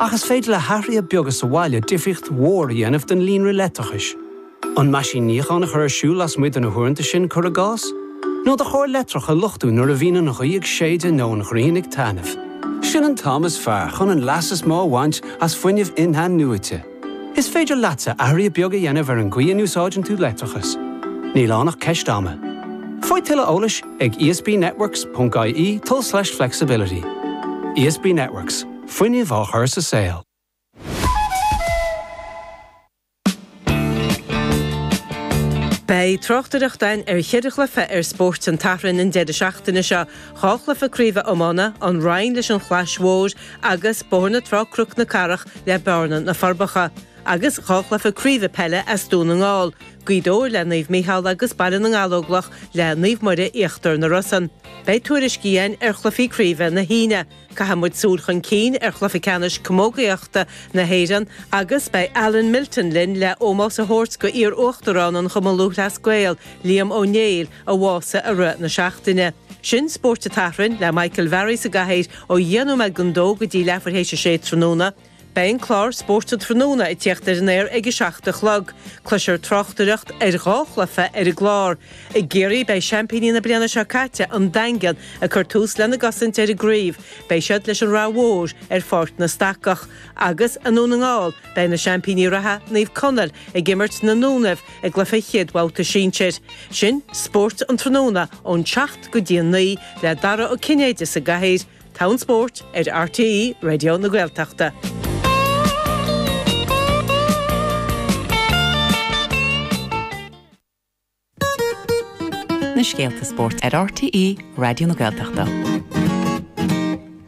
Ach is féidir le hathruithe beaga sa bhaile difríocht mhór a dhéanamh don líonra leictreachais. An meaisín níocháin a chur ar siúl lasmuigh de na huaireanta sin, cuir i gcás? Nó do charr leictreach a luchtú nuair a bhíonn an ghaoth ag séideadh nó an ghrian ag taitneamh? Sin an t-am is fearr chun an leas is mó a bhaint as fuinneamh in-athnuaite. Is féidir leatsa athruithe beaga a dhéanamh ar an gcaoi a n-úsáideann tú leictreachas. Níl ann ach ceist ama. Faigh tuilleadh eolais ag esbnetworks.ie tul/flexibility. ESB Networks, fuinneamh á chur sa saol. Beidh tráchtaireacht againn ar cheithre chluiche ar Spórt an tSathairn an deireadh seachtaine seo, dhá chluiche craoibhe iomána, An Rinn leis an Chlais Mhór agus Bóthar na Trá Cnoc na Cathrach le Bearna, Na Forbacha, agus dhá chluiche craoibhe peile as Dún na nGall, Gaoth Dobhair le Naomh Micheál agus Baile na nGallóglach le Naomh Muire Íochtar na Rosann. Beidh tuairiscí againn ar chluichí craoibhe na hAoine, caithfidh muid súil chun cinn ar Chluiche Ceannais Camógaíochta na hÉireann agus beidh Alan Milton linn le ómós a thabhairt go iar-Uachtarán an Chumann Lúthchleas Gael, Liam Ó Néill, a bhásaigh i rith na seachtaine. Sin Spórt an tSathairn le Michael Varry sa gcathaoir ó dheich nóiméad don 2 go dtí leathuair théis a 6 tráthnóna. Beidh an clár Spórt an Tráthnóna ag tíocht ar an aer ag a seacht a chlog. Cloisfear tráchtaireacht ar dhá chluiche ar an gclár. I gCiarraí beidh seaimpíní na bliana seo caite, An Daingean, ag cur tús lena gcosaint ar an gcraobh. Beidh siad leis an Ráth Mhór ar Pháirc na Stacach. Agus i nDún na nGall beidh na seaimpíní reatha, Naomh Conaill, ag imirt na nDúnaibh, i gcluiche chéad-bhabhta sinsir. Sin Spórt an Tráthnóna ón seacht go dtí a naoi le Dara Ó Cinnéide sa gcathaoir, togha an spóirt ar RTÉ Raidió na Gaeltachta. Na scéalta spóirt ar RTÉ Raidió na Gaeltachta.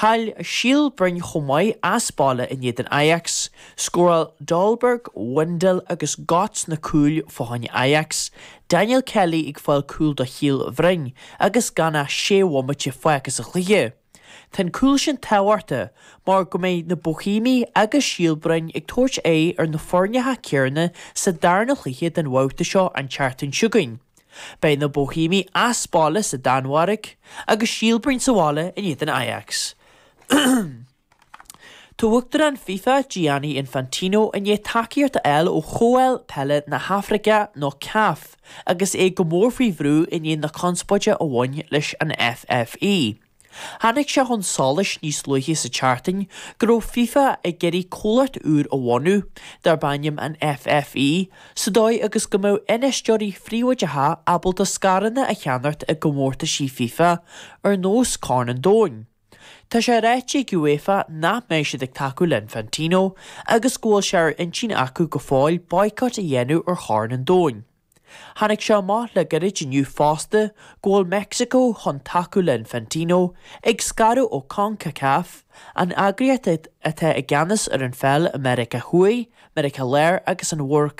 Chaill Síol Broin chomh maith as baile in éadan Ajax. Scóráil Dolberg, Wijndal agus Godts na cúil fá choinne Ajax, Daniel Kelly ag fáil cúl do Shíol Bhroin agus gan ach sé bhomaite fágtha sa chluiche. Tá an cúl sin tábhachtach mar go mbeidh na Bohemiaigh agus Síol Broin ag tabhairt aghaidh ar na foirneacha céarna sa darna chluiche den bhabhta seo an tseachtain chugainn. Beidh na Bohemiaigh as baile sa Danmhairg agus Síol Broin sa bhaile in éadan Ajax. Tá Uachtarán fifa, Gianni Infantino, i ndiaidh tacaíocht a fháil ó Chomhdháil Peile na hAfraice nó caf agus é go mór faoi bhrú i ndiaidh na conspóide a bhain leis an FFE. Tháinig sé chun solais níos luaithe sa tseachtain go raibh FIFA ag iarraidh comhlacht úr a bhunú, darb ainm an FFE, sa dóigh agus go mbeadh infheisteoirí príobháideacha ábalta scaireanna a cheannacht i gcomórtaisí FIFA, ar nós Corn an Domhain. Tá sé ráite ag UEFA nach mbeidh siad ag tacú le Infantino agus go bhfuil sé ar intinn acu go fóill boycott a dhéanamh ar Chorn an Domhain. Tháinig sé amach le gairid inniu fosta go bhfuil Meicsiceo chun tacú le Infantino ag scaradh ó Concacaf, an eagraíocht atá i gceannas ar an pheil i Meiriceá Thuaidh, Meiriceá Láir agus an Mhuir